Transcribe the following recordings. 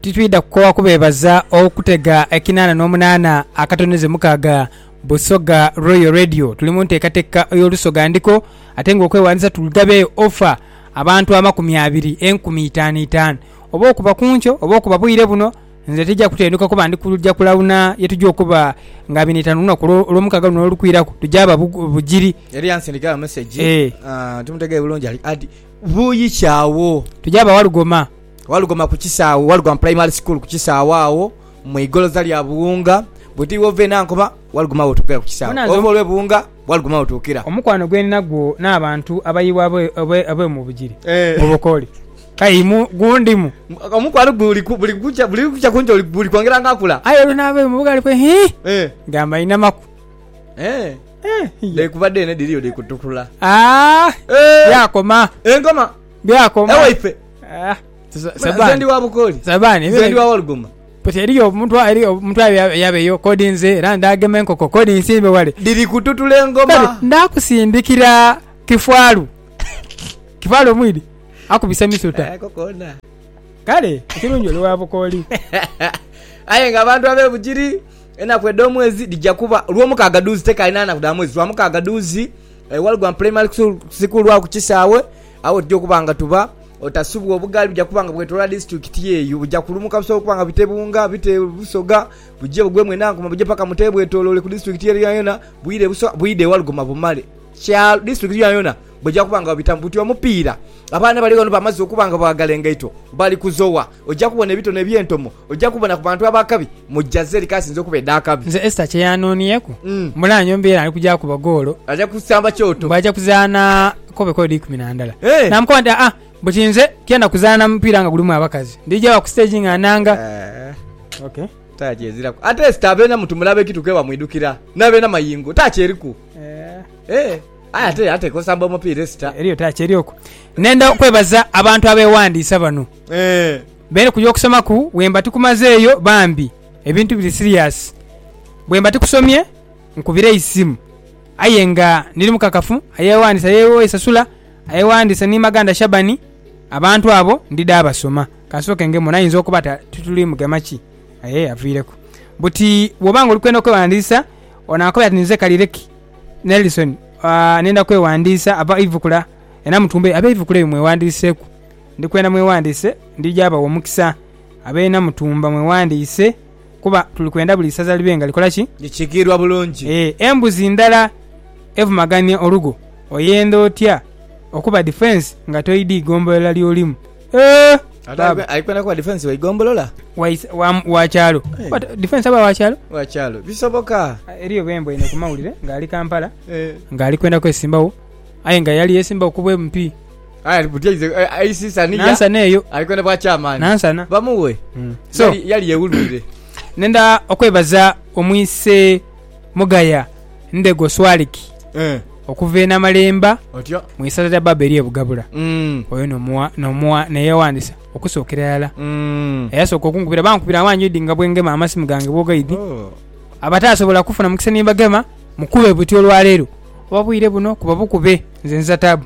Titwidha kukoowa kubeebaza okutega ekinaana n'omunaana akatoneze mukaaga Busoga Royal Radio. Tuli mu nteekateeka ey'Olusoga Ndiko ate ng'okwewandiisa tugabe ofa abantu amakumi abiri, enkumi itaanu itaanu. Oba okuba ku nkyo oba okuba bwire buno, nze tija kutenduka kuba ndi kuja kulawuna ye tuja okuba nga abiri n'eitaanu ku lunaku olw'omukaaga luno olukwiraku, tuja ba Bugiri. Yali yansindikira message Eh. ah, timutegeere bulungi ali adi Buyi ki agho? Tugya ba Walugoma. Walugoma ku kisaawe, Walugoma Primary School ku kisaawe agho mu igoloza lya Buwunga. Bwoti iwe ova e Nankoma, Walugoma w'otuukira ku kisaawe. Bona nze Ova olw'e Buwunga, Walugoma w'otuukira. omukwano gwe nina gwo n'abantu abayiibwa abe, abe, abe mu Bugiri, Eh. mu Bukooli. Kale imu gundimu. Omukwano guli ku, buli kukya, buli kukya kungi oli, guli kwongera nga akula. Aye olwo n'abe mu Bugaali kwe, hii, Eh. ngamba inamaku. Eh. Dheekuba dheene dhiriyo dhikutukula. Byakoma. Enkoma. Byakoma. Ewaife. Nze ndi wa Bukooli. Nze ndi wa Walugoma. But eriyo omuntu eriyo omuntu yabeyo kodi nze era ndagema enkoko kodi nsimbe wale. Dhiri kututula engoma. Ndakusindikira kifwalu. Kifwalu omwidi akubise misuta. Kale ekirungi oli wa Bukooli. Aye nga abantu ab'e Bugiri. Enaku edh'omwezi dhija kuba Lwomukaaga dhuuzi tekaali na naku dha mwezi, Lwamukaaga dhuuzi e Walugwa Primary School lwa ku kisaawe agho tuja okuba nga tuba. Otasubwa obugaali buja kuba nga bwetolola disitulikiti eyo. Buja kulumuka busobola okuba nga bute Bunga, bute Busoga, buje bugwe Mwenankuma buje paka Mutebe bwetoloole ku disitulikiti ere yonayona, bwire Busoga bwide e Walugoma bumale kyalo disitulikiti yonayona bweja kuba nga babitamu. Buti omupiira abaana bali ghano bamaze okuba nga baagala engaito bali kuzowa. Oja kubona ebitone eby'entomo, oja kubona ku bantu ab'akabi mu Jazeri k'asinze okuba edh'akabi. Nze Esther kye yaanoonyeku, mula nyombi era ali kuja kuba goolo. Aja kusamba kyoto. Bw'aja kuzaana kobe koodi ikumi na ndala. Naamukoba nti, Aa, buti nze tienda kuzaana mupiira nga gulimu abakazi. Ndija wa ku siteegi nga nnanga. Ok. Takyeziraku. Ate Esther abeena mutu mulabe ki tuke bamwidhukira. N'abeena mayingo. Taaki eriku. Ee. Aye ate ateekwa osamba omupiira Esther. Eriyo taaki eri okwo. Nenda kwebaza abantu abeewandiisa bano. Beene ku y'okusomaku bwemba tikumazeeyo bambi ebintu biri serious bwemba tikusomye nkubira eisimu aye nga ndiri mukakafu ayewandisa yesasula ayewandisa ni Maganda Shaban abantu abo ndidha basoma kansooke ngemu naye oyinza okuba tituli mugema ki aye yaviireku buti bwoba nga oli kwenda okwewandiisa onankobera ati ninze Kalireki Nelson nenda kwewandiisa aba Ivukula e Namutumba eyo abe Ivukula eyo mwewandiiseku. Ndi kwenda mweghandiise, ndija bawa omukisa. Abeena Mutumba mweghandiise kuba tuli kwenda buli isaza libe nga likola ki? Likiikiirwa bulungi. Ee, embuzi ndala evumagania olugo oyenda otya okuba difensi nga toidhi igombolola ly'olimu? Eeh! Baaba! Ali kwenda kuba difensi wa igombolola? Wa isa, wa, wa kyalo. Kuba to, difensi aba wa kyalo? Wa kyalo. Bisoboka! Eriyo bwe mbweine ku mawulire ng'ali Kampala, ng'ali kwenda kwesimbagho, aye nga yali yeesimbagho ku bw'empi. Aye ali buti aize eh, aisi sani ya. nansana eyo Ali kwenda bwa chairman. nansana Bamuwe. Mm. so Yali yali yewulwire. nenda okwebaza omwise mugaya ndego swaliki Eh. okuva e namalemba Otyo. mu isaza lya baba eri ebugabula Mm. oyo nomuwa nomuwa neyewandisa okusookera yala Mm. eyasooka okunkubira bankubira awanjidi nga bwengema amasimu gange bwogaidi Oh. abataasobola kufuna mukisa nimbagema mukube buti olwaleero oba bwire buno kuba bukube nze nza taabu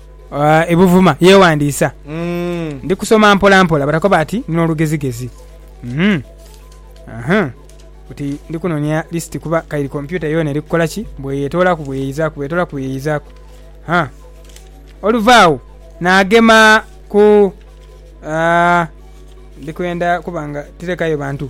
E Buvuma yeewandiisa. Ndi kusoma mpola mpola but akoba ati ndi n'olugezigezi. Uhum. Buti ndi kunoonia lisiti kuba kairi kompyuta yoona eri kukola ki? Bweyetoolaku bweyeyizaaku, bweyetoolaku bweyeyizaaku. Ha. Oluva agho naagema ku, ah, ndi kwenda kuba nga tirekayo bantu.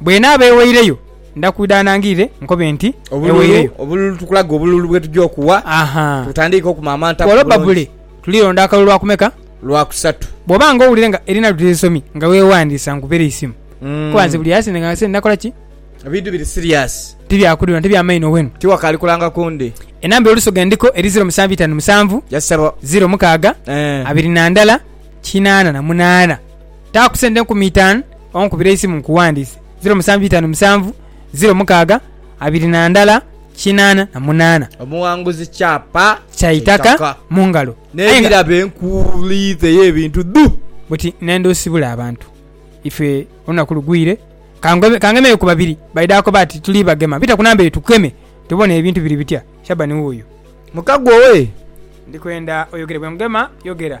Bw'enaaba eweireyo, nda kwidha anangirire nkobe nti, Eweireyo. Obululu, Tukulage obululu bwe tuja okuwa, tutandiike okumaamanta ku bulungi. Olwo babule. Tulironda akalulu lwakumeka? Lwakusatu. Bw'oba nga owulira nga erina lw'oteesomye, nga weewandiisa nkubere eisimu. Kuba nze buli asinze nga nse nakola ki? Ebintu biri siriasi. Tibyakudhula nate bya maino wenu. Tiwakaali kulanga ku ndi. Enamba y'olusu ghe ndiko eri ziro musanvu itaanu musanvu, ziro mukaaga, abiri na ndala kinaana na munaana. Taa ku sente enkumi itaanu onkubire eisimu nkuwandiise, ziro musanvu itaanu musanvu, ziro mukaaga abiri na ndala kinaana na munaana. Omuwanguzi kyapa kya itaka mu ngalo. N'ebirabe nkuliitheyo ebintu dhu. Buti nenda osibule abantu. Ife olunaku lugwire kangemeyo ku babiri. Baidha akoba ati, Tuli bagema, bita ku namba eyo tukukeme tubone ebintu biri bitya. Shabani wuuyo. Muka gwowe. Ndi kwenda oyogere. Bwe ngema, yogera.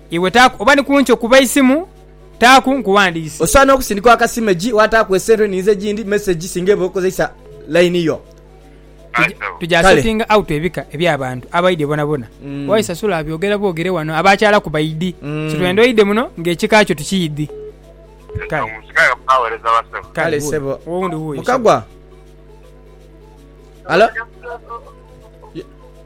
Iwe taaku oba ni ku nkyo kuba eisimu, taaku nkuwandiise. Osaana okusindika akasimegi waataaku esente ninze gindi mesegi singa eba okozeisa line yo. Tuja settinga out ebika eby'abantu abaidhe bonabona. Why sasula abyogera bwogere wano abaakyalaku baidhi. Kitwenda oidhe muno nga ekika kyo tukiidhi. Kale sebo. Mukagwa. Hello.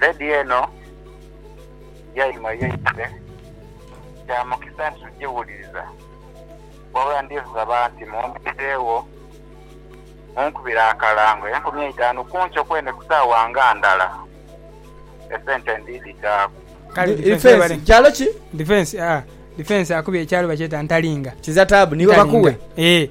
Lady eno yaima yaidhule, kya mukisa nti tugiwuliriza, wabula ndisaba nti mumpitiregho munkubire akalango enkumi eitaanu ku nkyo kwene ku saawa nga ndala, esente ndidhitaaku. Kale difensi kyalo ki? Difensi, aa, difensi akubye ekyalo bakyeta Ntalinga. Kiza taabu, niiwe bakughe? Ntalinga, ee.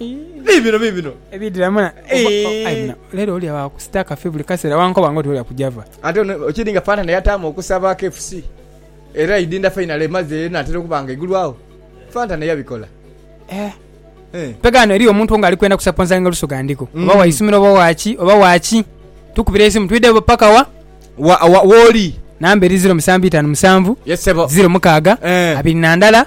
Biibino, biibino ebiidhiramu na. Aye muno leero oli agho akusita kafi buli kaseera wankoba ng'oti oli akuja va. Ate ono okiri nga Fanta naye ataamu okusaba KFC era idinda fainale emaze enaatera okuba nga egulwawo. Fanta naye abikola. Eh. Eh. Mpega ghano eriyo omuntu ng'ali kwenda kusaponsainga Lusoga Ndiko. Oba wa Mm. isomero oba wa ki, oba wa ki. Tukubire eisimu twidhe bo paka wa? Wa, wa, wooli. Namba eri ziro musanvu itaanu musanvu, Yes, ssebo. ziro mukaaga, Eh. abiri na ndala.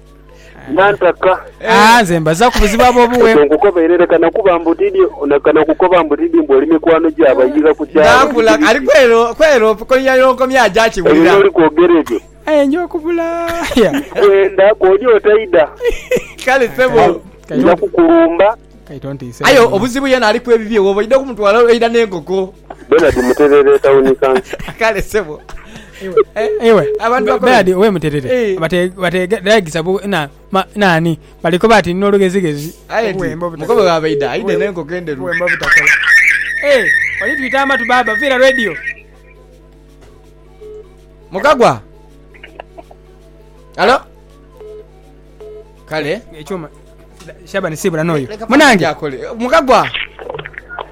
Nantaka. Ah, nze mbazaaku buzibu abo obuwe. Ekyo nkukobeirere kana kuba mbu tidhi, kana kukoba mbu tidhi mbu oli mikwano gya bayiga ku kyalo. Naakula, Biki ali biki? kwero, kwero komya n'okomya aja Ebyo akiwulira. by'oli kwogera ebyo Aye nja okubula. Ya. ndikwenda, kw'oli otaidha, Kale ssebo. Kale, kale. nja kukulumba. Aye obuzibu yena aliku ebibye woba oidha okumutwala eidha nenkoko. Bernard Muterere Tawuni Kansa. Kale sebo ewe Bernard owe Muterere bategeregisa bu nani bali koba ati nina olugezigezi. Aye ti mukobe wa baidha aidhe nenkoko enderu. Eeh oli twita amatu baaba viira radio. Mukagwa. Hallo. Kale. Ekyuma. Shabani sibula noyo. Munange. Yakole. Mukagwa.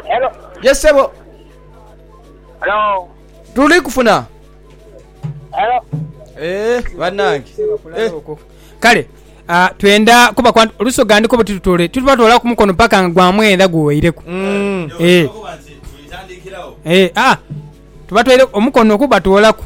Hello. Yes sebo. Hello. Tuli kufuna. Hello. Eh, banange. Eh. Kale. Uh, twenda kuba kwa lusoga ndiko butitutole tutubatwala ku mukono paka nga gwamwenda guweireku mm. eh. eh, ah, tubatwere omukono kubatwolaku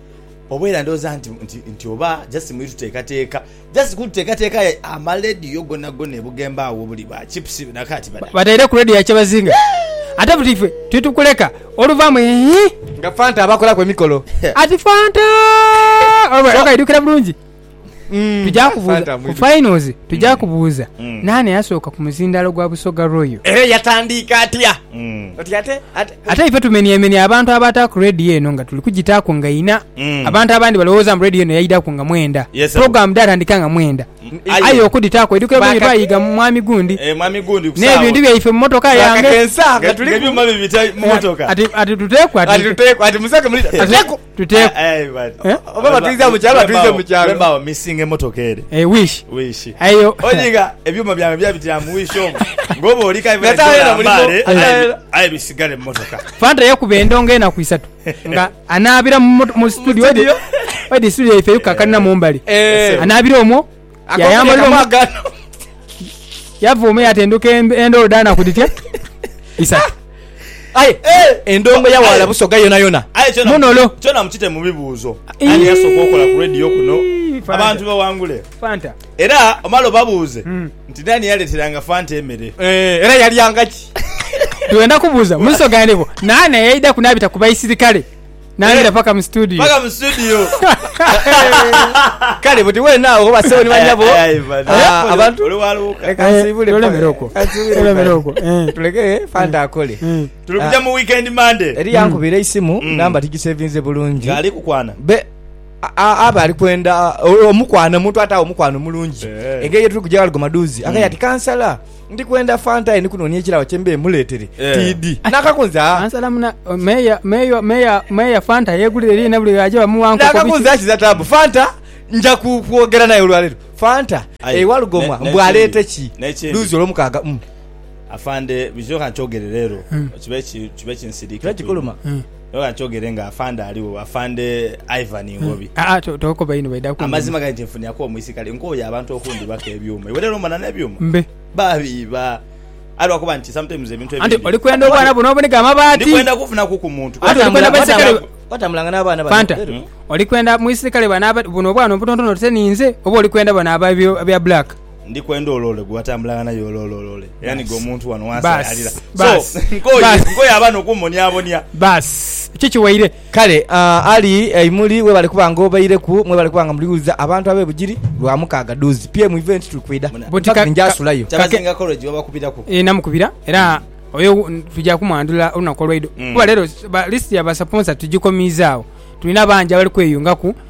Oba era ndhooza nti, nti, nti oba just muli tuteekateeka, just kututeekateeka aye amalediyo gonagona e Bugembe agho buli ba chips na kaati badha. Bataireku lediyo ya Kyebazinga. Ate buti ife tuli tukuleka oluvaamu eehh. Nga Fanta abakolaku emikolo. Ati Fanta! Oba era okaidhukira bulungi. Mm. Tuja Fanta kubuuza ku mwitu. finals, tuja kubuuza Mm. naani eyasooka ku muzindaalo gwa Busoga Royal. Era yatandiika atya? Mm. Oti ate ate Ate ife tumeniemenia abantu abataaku radio eno nga tuli kugitaaku nga ina. Mm. Abantu abandi balowooza mbu radio eno yaidaku nga mwenda. Yes, sir. Program dhatandika nga mwenda. aye. Aye okuditaaku edukira Baka- bwenyo twayiga mu mwami gundi. Eh, mwami gundi ku saawa. N'ebintu byaife mu motoka yange. Bakakensa nga Nga- tuli nga ku- ebyuma bibita mu motoka. Ati ati tuteeku ati. Ati tuteeku, ati musake muli- Ate- teeku. Tuteku. Aye man. Eh? Oba batwiza mu kyalo, batwize mu kyalo. Wema awo missing emotoka ere. Eh, wish. Wishi. Ayo. Olinga ebyuma byange byabitira mu wishi omwo. Ngoba oli kai Nga tabeera mulimu. mbale. Aye- Aye bisigale mu motoka. Fanta yakuba endongo enaku isatu nga anaabira mu mot- mu studio wedi- wedi studio yaife eyukakanira mumbali Eh. anaabira omwo Yayambalira omu- Mwagano. Yavuuma yatenduka en- endhoolo dhanaku dhitya isatu Aye endongo ya wala busoga yona yona. Aye kyona Munolo. kyona mukite mu bibuuzo. Ii. Ani yasooka okola ku radio kuno? Fanta. Abantu bawangule. fanta Era omala obabuuze Mm. nti nani yaleteranga Fanta emere. Eh, era yalyanga ki? twenda kubuuza muziso gandeko naana yaida kunabita ku baisirikale Nangila paka mu studio. Paka mu studio. Kale buti wena awo basewo ni banyabo. Ah, abantu oli waluka. Leka eh, nsibule. Tulemere okwo. Tulemere okwo. Eh. Tuleke fanta eh. akole. Tuli kuja ah. mu weekend Monday. Eri yankubira mm. isimu mm. namba tigisevinze bulungi. Gali kukwana. Be aba ali kwenda omukwana omuntu atawo omukwana omulungi engeri yetuli kuja waligo maduzi akayati kansala mm. Ndi kwenda fanta aye ndi kunoonia ekiraawo kye mbeere mmuleetere tiidi na kakunzi aa. Kansala muna, Meeya, Meeya, Meeya, Meeya Fanta yeegulira eliinha buli lwe aja bamuwa nkoko biki. Nakakunzi akiza taabu. Fanta nja kwogera naye olwaleero. Fanta, Aye ewa Lugomwa mbu aleete ki n'ekindi. luuzi Olwomukaaga? Umm. Afande, bwikyo ka nkyoogere leero kibe kinsiriike. Kibe kikuluma. Oyo akyogere nga afande aligho, afande Ivan Ngobi. Aa to tokoba inho baidha kunuma. Amazima gani kyenfuniaku omwisikale nkoye abantu okundhibaku ebyuma iwe lero mbona nebyuma Mbe. babiiba aye lwakuba nti sometimes ebintu Anti ebindhi olikwenda obwana buno obunige amabaati. ndikwenda kufunaku ku muntu Anti olikwenda Watambula- baisikale watambula- watambulanga n'abaana bano Fanta Eriku. olikwenda mwisikale bano aba buno obwana obutontono oti se ninze oba olikwenda bano aba ebyo ebya black. Ndi kwenda oloole gwe watambulanga naye oloolooloole era niga omuntu wano wansayaalira so nkoye nkoye abaana okumbonyabonya. Baasi ki kiwaire? Kale Ali aimuli webale kuba nga obaireku mwebale kuba nga muli wuliza abantu abe Bugiri lwa mukaaga duuzi PM event tuli kwidha in fact nja sulayo. Kyabazinga college babakubiraku. Eeh namukubira era oyo tuja kumwandhula olunaku olweidho kuba lero list ya ba sponser tugikomiiza agho tulina bangi abali kweyungaku.